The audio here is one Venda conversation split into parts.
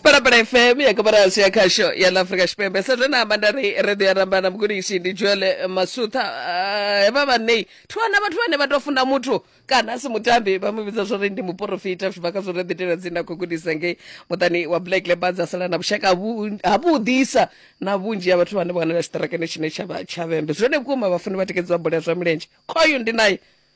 parapara fm ya kabarasi ya khasho ya la afrika tshipembe sa zwe na amba nda ri redio ya rambana mugudisi ndi joele masutha Ah, hevha vhanei thi wana vhathu vhane vha tou funa muthu kana a si mutambi vha mu vhidza zwo ri ndi muporofita zwi bva kha zwo ri ḓitela dzine a khou gudisa ngei muṱani wa black leopards a sala na vhushaka havu- havhuḓisa na vhunzhi ha vhathu vhane vha wanala tshiṱarakani tshine tsha vha tshavhembe zwone vhukuma vhafuni vha tikedzwa bola ya zwa milenzhe khoyu ndi naye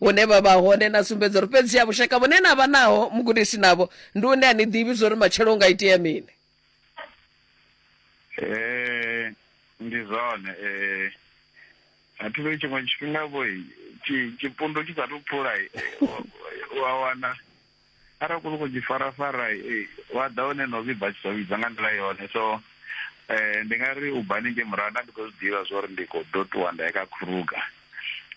hune vha vha hone na sumbedza uri fhedzi ya vhushaka vhune na vha naho mugudisi navho ndi une a ni ḓivhi zwo ri matshelo u nga itea mini um ndi zwone um a thi vhe tshiṅwe tshifhinga vho tshipundo tshi sa tou phula wa wana arali khou sokou tshi farafara eh, wa ḓa hone no vhibva tshi tou vhibva nga nḓila yone so um ndi nga ri ubani nge murahu nda ndi khou zwi ḓivha zwa uri ndi khou ḓo ṱuwa nda ya kha kruga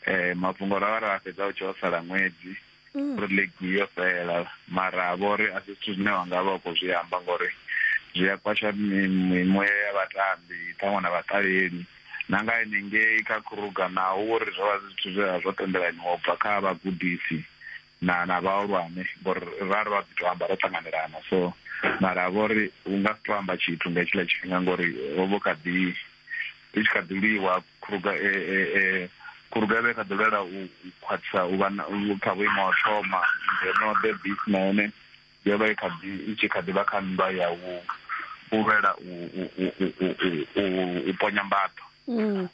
um mafhungo ra vha ra a fhedza u tshi o sala ṅwedzi mm. uri ligi yo fhela mara a vho uri a si zwithu zwine wa nga vha u khou zwi amba ngori zwi a kwasha mimuya ya vhatambi ṱhaṅwe na vhaṱaleli na nga henengei kha kruga naho uri zwo vha zwithu zwe zwo tendelanyiwa u bva kha vhagudisi na na vhahulwane ngori ra ri vha ḓi to amba ro ṱanganelana so mara vho ri u nga si to amba tshithu nga hetshiḽa tshifhinga ngori ho vho kha ḓi i tshi kha ḓi lwiwa khuruga e e e khuruga vhe kha ḓi lwela u khwaṱhisa u vha kha vhuimo ha thoma ngeno the beast na yone yo vha i kha ḓi i tshi kha ḓi vha kha nndwa ya u u lwela u u u u u ponya mbaḓo mm.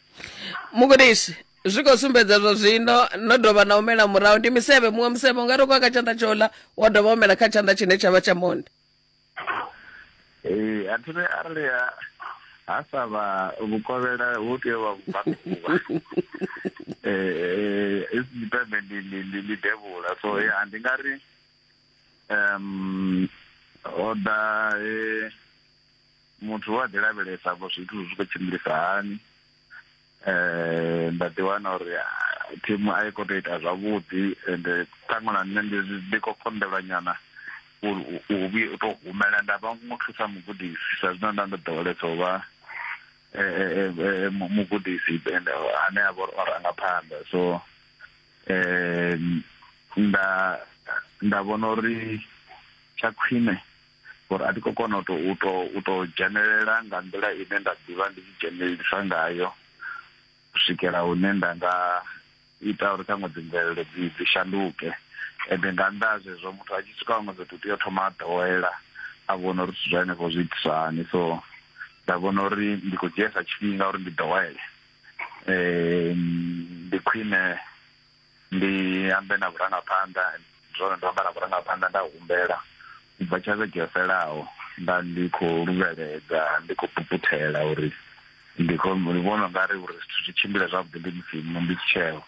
mugudisi zwi khou sumbedza zwa zwino no dovha na humela murahu ndi misevhe muṅwe musevhe u nga ri khou kha tshanḓa tsho ḽa wa dovha humela kha tshanḓa tshine tsha vha tsha monde ee a thiri arali ha sa vha vhukovhela hu tea vha vhubakuvha eh isipembe ndi ndi ndi ndi devula so ya ndi nga ri um oda eh muthu wa ḓi lavhelesa vho zwithu zwi khou tshimbilisa hani eh nda ḓi wana uri ah, thimu a i khou tou ita zwavhuḓi ende ṱhaṅwe na nṋe ndi- ndi khou konḓelwa nyana uri u- u vhuye u tou humela nda vha mu thusa mugudisi sa zwino nda ndo ḓowelesa u vha eh, eh, eh, eh, mu- mugudisi ende ane a vha uri o ranga phanḓa so eh nda nda vhona uri tsha khwine ngori a thi khou kona u to u to u to dzhenelela nga nḓila ine nda ḓivha ndi tshi dzhenelelisa ngayo u swikela hune nda nga ita uri ṱhaṅwe dzi mvelelo dzi dzi shanduke ende nga nnḓa ha zwezwo muthu a tshi swika huṅwe fhethu tea u thoma a ḓowela a vhona uri zwithu zwa henefho zwi itiswa hani so nda vhona uri ndi khou dzhiesa tshifhinga uri ndi ḓowele um ndi khwine ndi ambe na vhurangaphanḓa zwone ndo amba na vhurangaphanḓa nda humbela ubva tsha vhege yo fhelaho nda ndi khou luvheledza ndi khou puputhela uri ndi khou ndi vhona nga ri uri zwithu zwi tshimbile zwavhuḓi ndi musi mu ndi tsheo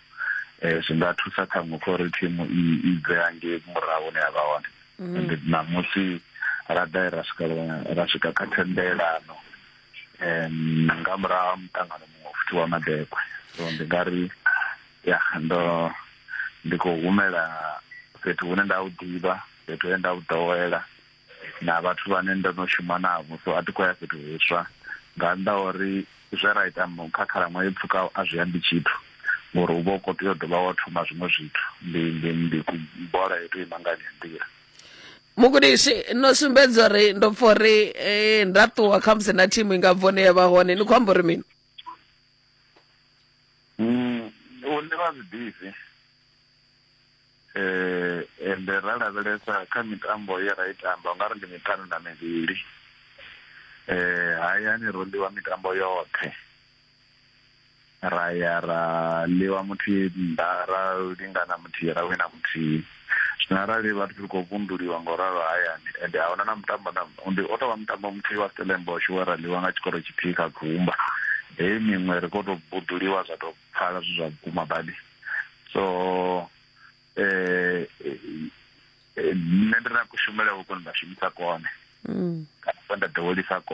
eh zwi nga thusa kha muṅwe kha uri thimu i i bve hangei murahu hune ya vha hone ende ṋamusi ra ḓa ra swika ra swika kha thendelano em nga murahu ha muṱangano muṅwe futhi wa madekwe so ndi nga ri ya ndo ndi khou humela fhethu hune nda u ḓivha fhethu he nda u ḓowela na vhathu vhane ndo no shuma navho so a thi khou ya fhethu huswa nga nnḓa uri zwe ra ita kha khalaṅwaha i pfhukaho a zwi ambi tshithu ngori u vha u khou tea u dovha wa thoma zwiṅwe zwithu ndi ndi ndi bola yo tou ima nga ḽi nḓila mugudisi no sumbedza uri ndo pfa uri eh, nda ṱuwa khamusi na thimu i nga bvo ne ya vha hone ni khou amba uri mini Mm, hune vha zwiḓivhi eh ende ra lavhelesa kha mitambo ye ra i tamba nga ri ndi miṱanu na mivhili eh hayani ro ḽiwa mitambo yoṱhe ra ya ra ḽiwa muthihi nnḓa ra lingana muthihi ra wina muthihi Zwino arali vhathu ri khou vunduliwa nga u ralo hayani ende a huna na mutambo na ndi o tovha mutambo muthihi wa Stellenbosch we ra ḽiwa nga tshikoro tshithihi kha gumba heyi miṅwe ri khou tou buduliwa zwa tou pfala zwi zwa vhukuma badi so eh nṋe ndi na kushumele huko nda shumisa kone kana nda ḓowelisa kone